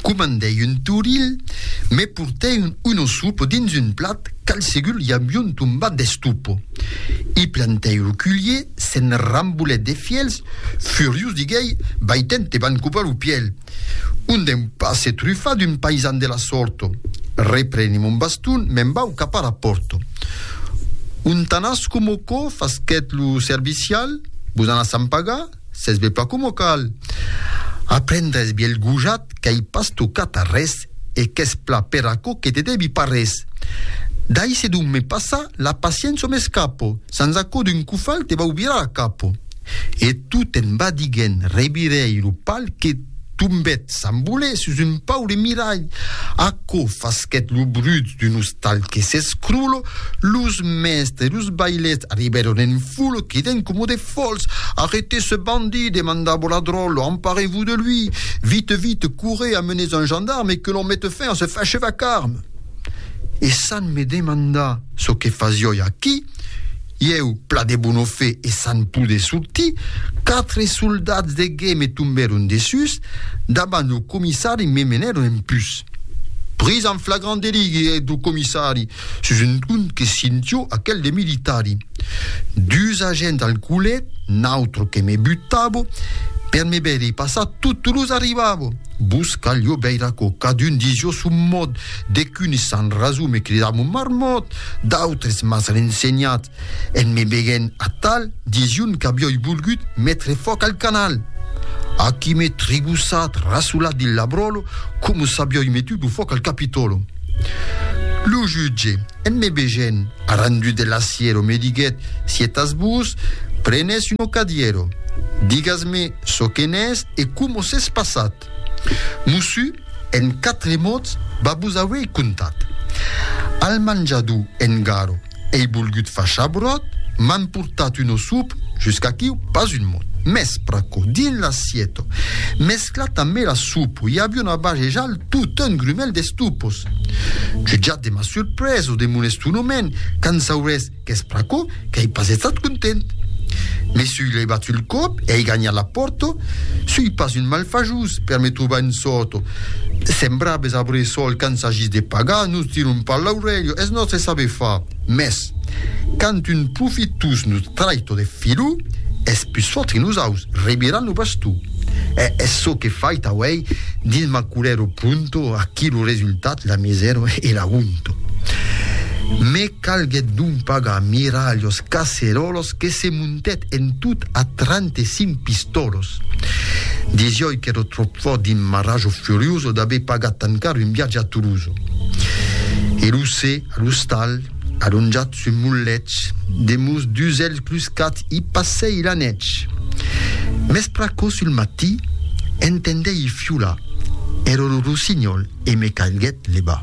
Comandèi un toril, me portèi un osopo dins un plat qu'al segur i avion tombat d'estopo. I plantèi lo culhier, se'n rambolèt de fièlhs, furiós diguèi, Vai te'n te van copar lo pièlh! Un deu pas se trufar d'un paisan de la sòrt! Repreni mon baston, me'n vau cap ara pòrt. Un tanasco mocò, fasquèt lo servicial, vos anatz a en pagar? Sètz be pas coma cal. Aprendràs be el gojat qu'ai pas tocat arrés e qu'es pla per aquò que te debi pas res. Dai se dun me passa la paciença o m'escapo, sans aquò d'un cofal te vau virar la capo. E tu te'n vas diguent, revirèi lo pal que. Tombèt Sant Bolet sus un paure miralh. Aquò fasquèt lo brut d'un ostal que s'escrolò. Los mèstres e los bailèths arribèron en foule, quedènt coma de fòls. Arretez ce bandit! demandava la dròlla. Emparez-vos de lui! Vite, vite, courrez, amenez un gendarme e que l'on mete fin a ce facheva carme! E Sant me demanda çò que fasioi aquí. Ieu, pla de bona fe e san poder sortir, quatre soldats de guer me tombèron dessús, davant lo comissari me menèron en pus. Pris en flagrant delit, guèt lo comissari, sus un ton que sintió aquel de militari. Dus agents al colet, nautre que me butava, per me veire passar totu los arribava. Vos calió veira co cadun disió son mòd, de qu'unes s'an raso me cridar mon marmòt, d'autres mas rensenhat, en me veguent atal, dision qu'avioi volgut metre fòc al canal. Aquí me trigossat, rasolat dins l'abròlo, coma s'avioi metut lo fòc al Capitòlo. Lo jutge, en me vegent, arrandut de l'aciero, me diguet, Si etas vos, prenes un ocadiero. Digas-me, Çò que n'es e coma s'es passat. Mossu, en quatre mots, va vos auei contat. Al manjador en Garo ei volgut far chabròt, m'an portat un ossop, jusqu'aquiu pas un mot. Mès pr'aquò, dins l'assieto, mesclat amé la sopa, i aviá una bajejal tot un grumèl d'estupos. Jutjat de ma surpresa o de mon estonoment, qu'an saurés Qu'es pr'aquò qu'ei pas estat content. Me sui levat sul còp, ei ganhat la pòrta, sui pas un malfajós per me trobar un sòrto. Sembraves a Bressol quand s'agís de pagar, nos tiron pas l'aurelha, es nòstre saber far. Mès, quand un profitós nos traita de filó, es pus fòrt que nosaus, reviran lo bastó. E es çò qu'è fait auei dins ma culero pronto, aquí lo resultat, la misèra e la honta. Me. Calguèt donc pas a mirar los caceròlos que se montèt en tot a trente-cinc pistòlos. Disioi qu'èro tròp fòrt dins ma rajo furioso d'aver pagat tan car un viatge a Toulouse. E lo se, a l'ostal, alonjat sus mon lèch, demús d'usèlh cluscat i passèi la nètz. Mès pr'aquò sul matí, entendèi fiolar, èro lo rossinhòl e me calguèt levar.